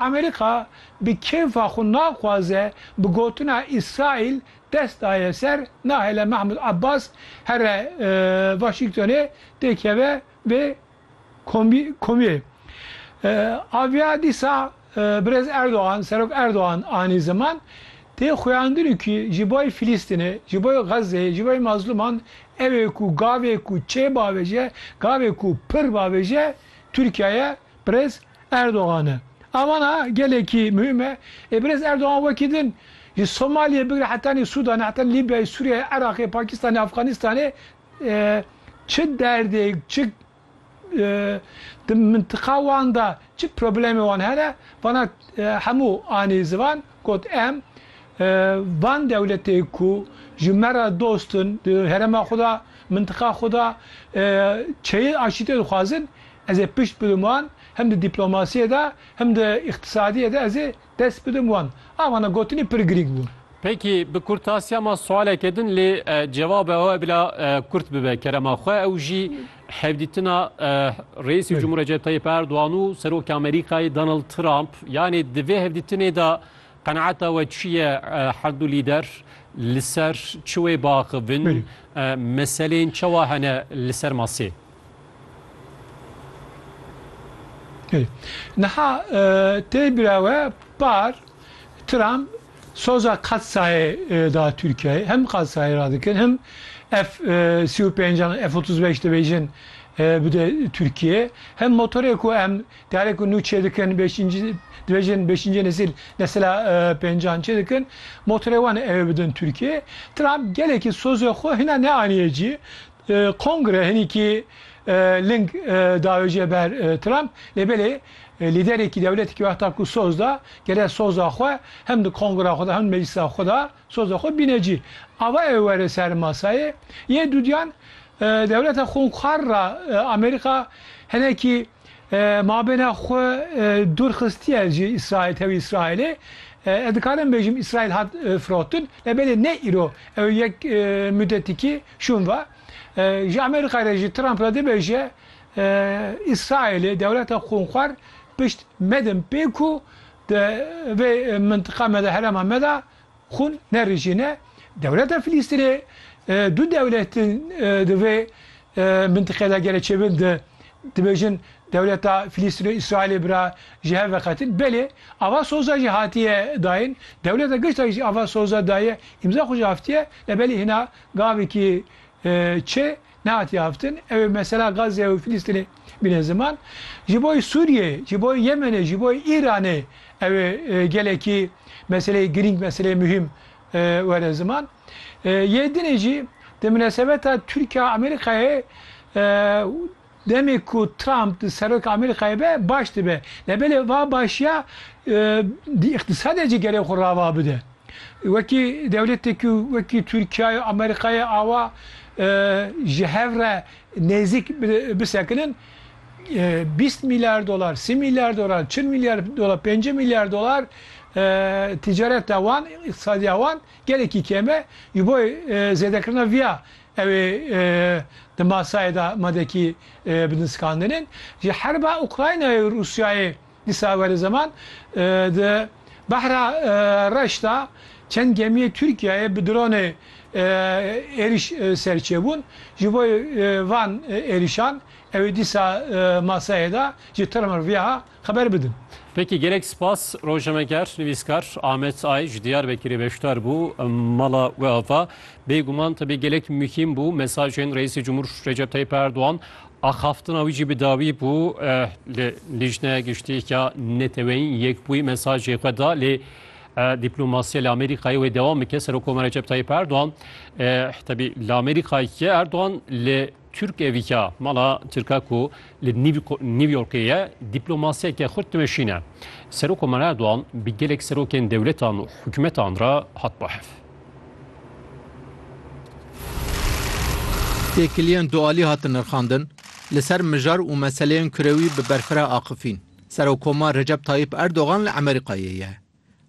Amerîka bi kêfa xwe naxwaze bi gotina Îsraîl dest daye ser nahêle Mahmûd Abbas here Waşîngtonê tê keve vê komîyê. Aviya dîsa Birêz Erdogan, Serok Erdogan anî ziman, tê xuyandinû kî ji bo Filîstînê, ji bo Xezzeyê, ji bo mazlûman ewê ku gavê ku çê bavêje, gavê ku pir bavêje Tirkiyeye Birêz Erdogan e. A vana gelekî muhîm e. Ê birêz Erdogan wekî din ji Somaliyê bigre hetanî Sûdanê, heta Lîbyayê, Sûriyeyê, Iraqê, Pakîstanê, Afxanîstanê çi derdêk, çi di mintiqa wan de çi problemê wan hene, vana hemû anî zivan. Got, Em van dewletê ku ji me re dost in, di herêma xwe de, mintiqa xwe de çeyê aşîtê dixwazin, ez ê pişt bidim wan, hem di dîplomasiyê de, hem di îqtîsadiyê de ez ê dest bidim wan. A vana gotinê pir girîng bû. Pêkî bi kurtasiya ma siwaleke din lê cevabê we bila kurt bibe kerema xwe ew jî, Hevdîtina Reîsê Cumhur Recep Tayyip Erdogan û Serokê Amerîkayê Donald Trump yanê di vê hevdîtinê de qenaeta we çi ye herdu lîder li ser çi wê biaxivin meselên çawa hene li ser masê? Niha tê bira we par Trump Soza Katsayê da Tirkiyeyê. Hem Katsayê ra dikin hem F sî û pênc an F otuz beş dibêjin bide Tirkiyeyê. Hem motorê ku em diyarê ku nû çêdikin bêşîncî dibêjin bêşîncê nesîl nesila pênc an çêdikin motorê wan ê ew ê bidin Tirkiyeyê. Trump gelekî sozê xwe hîna neanîye cî. Kongre hinîkî ling dayo jê ber Trump lê belê lîderekî dewletekî wexta ku soz da gerek soza xwe hem di kongra xwe de hem di meclisa xwe de soza xwe bîne cî. Ava ew were ser masayê yê dûdiyan dewleta xwinxwar ra Amerîka hinekî Mabêna xwe dûr xistiye ji Îsraîl tevî Îsraîlê. Ez dikarim bêjim Îsraîl hat firotin. Lebelê ne îro ew yek mudetikî şûn va. Ji Amerîkayê re ji Trump re dibêje Îsraîlê dewleta xûnxwar pişt medin pê ku di vê mintiqa me de herêma me de Xûn ne rijî ne. Dewleta Filîstînê du dewlet in di vê mintiqê de gelê çêbin di dibêjin dewleta Filîstîn û Îsraîlê bira ji hev veqetin. Belê ava soza jî hatiye dayin. Dewleta Giştayî jî ava soza daye, îmza xwe jî aftiye. Lê belê hîna gavekî çê Nehatiye haftin ew ê mesela Gazze û Filistînê bîne ziman. Ji bo Sûriyeyê, ji bo Yemenê, ji bo Îranê ew ê gelekî meseleyê girîng, meseleyê muhîm were ziman. Yê dinê jî di minesebeta Tirkiya-Amerîkayê demê ku Trump di seroka Amerîkayê be baş dibe. Nebelê va başiya di îqtîsadê jî gerê xwe rava bide. Wekî dewletê ku wekî Tirkiya yo Amerîka ye awa ji hev re nêzîk bisekinin bîst mîlyar dolar, sî mîlyar dolar, çil mîlyar dolar, pêncî mîlyar dolar tîcareta wan, îqtisadiya wan gelekî kêm e. Ji bo zêdekirina viya ew ê di masayê de madekî bidinskandinin. Ji herba Ukraynayê û Rûsyayê. Di Sawerê Zeman di Behra Reş de çend gemiyê Tirkiyeyê bi dronê êriş ser çêbûn. Ji bo van êrişan ew ê dîsa maseyê de ji TRMVA xeber bidin. Peki gelek spas rojnameger, nivîskar Amet Ay ji Diyarbekirê beşdar bû mala we ava, Bêguman tevî gelek muhîm bû mesajên Reîsê Cumhur Recep Tayîp Erdogan Axaftina wî jî bi dawî bû li Lijne Giştîya Neteweyîn Yekbûyî mesajê xwe da lê dîplomasiya li Amerîkayê wê dewam bike. Serokomar Recep Tayyip Erdogan tebî li Amerîkayê ye. Erdogan li Türk Eviya mala Tirka ku li New Yorkê ye dîplomasiyeke xurt dimeşîne. Serokomar Erdogan bi gelek serokên dewletan û hikûmetan re hat bahev. Têkiliyên dualî hatin nirxandin, li ser mijar û meseleyên kurewî bi berfireh axifîn. Serokkomar Recep Tayyîp Erdogan li Emerîkayê ye.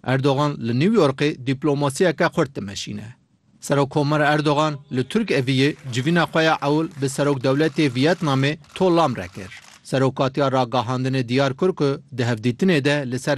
Erdogan li New Yorkê dîplomasiyeke xurt dimeşîne. Serokkomer Erdogan li Turk Eviyê civîna xwe ya ewil bi Serokdewletê Viyetnamê To Lam re kir. Serokatiya Ragihandinê diyar kir ku di hevdîtinê de li ser